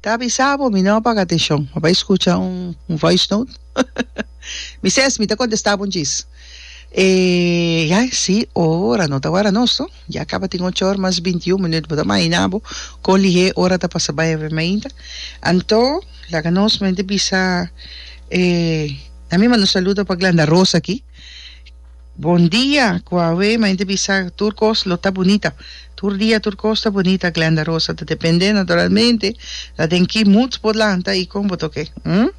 Ta avisa bo mi no paga atencion mi bai scucha un voice note mi ses mi ta contesta bo djis eh ya si ora no ta wara nos no ya caba tin ocho or mas binti y un minuut bo ta imagina bo con lihe ora ta pasa bai haber mi ainda anto laga nos mente bisa eh nan mi manda un saludo pa Glenda Rosa aki Bon dia cu awe main te bisa tur cos lo ta bunita tur dia tur cos ta bunita Glenda Rosa ta depende naturalmente la den ki moods bo lanta y con bo toke hm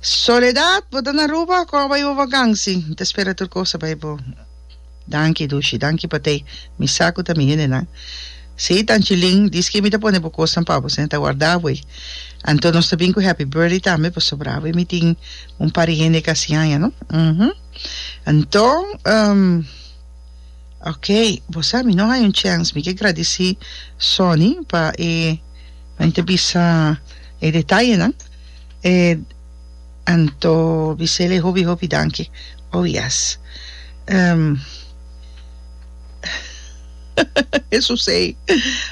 Soledad bo ta na Aruba cu awa y bo vakansi nta spera tur cos ta bay bo Danki Dushi, danki Patey, mi sa ku ta mi hendenan. Sí, Tanchilin, di ski mi ta pone bo kosnan pa bo, sena ta warda abo ei. Anto nos ta bin ku Happy Birthday tambe pasobra abo ei mi tin un pari hende ku a hasi aña, no? Uhumm. Anto, ehm, ok, bo sa mi no haña un chèns, mi ke gradisí Sonny pa e, mi ta bisa e detayenan, e. Anto bisele hopi hopi danki oh yes em Hesus ei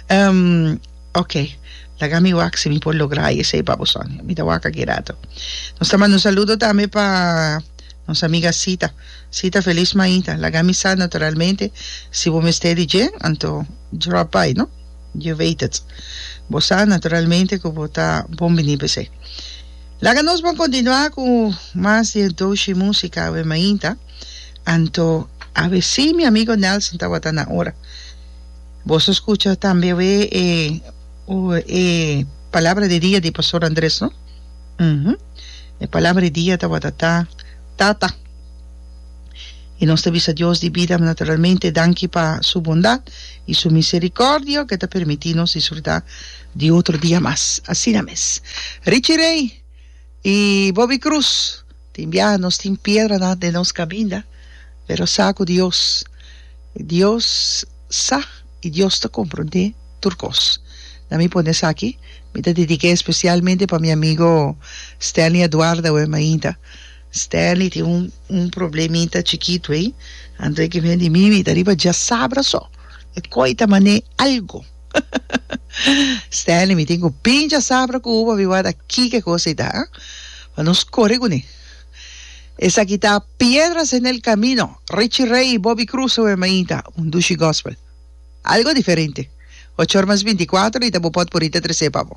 em oke laga mi wak si mi por logra e esei baboson mi ta wak aki rato nos ta manda un saludo tambe pa nos amiga Sita Sita felis maita laga mi sa naturalmente si bo mester di dje anto drop by no je weet het bo sa naturalmente ku bo ta bon bini p'esei. Laga nos por kontinuá ku mas di e doshi músika awe mainta, anto awe sí mi amigo Nelson tabata na ora. Boso a skucha tambe awe e e palabra di dia di Pastor Andres no? Uhu. E palabra di dia tabata ta Tata. I nos ta bisa Dios di bida naturalmente danki pa su bondat i su misericordio ke ta permití nos disfrutá Di otro dia mas, asina mes, Richie Ray i Bobby Cruz tin biaha. Nos tin piedranan den nos kaminda, pero sa ku Dios, Dios sa i Dios ta komprondé tur kos. Na mi pone esaki, mi ta dedik'é espesialmente pa mi amigo Stanley Aduarda awe mainta. Stanley tin un un problemita chikitu ei, anto e kem'é di mi, mi ta riba djasabra so, e koi ta man'é algu. Stanley, mi tin cu pincha sabra cu u papi wada kike cosa i ta, pa nos core cu ne. Esaki ta Piedras en el camino, Richie Ray i Bobby Cruz su Hermaita, un dushi gospel. Algo diferente. Ocho or mas binti kuater i ta bo pot por i ta trese pa bo.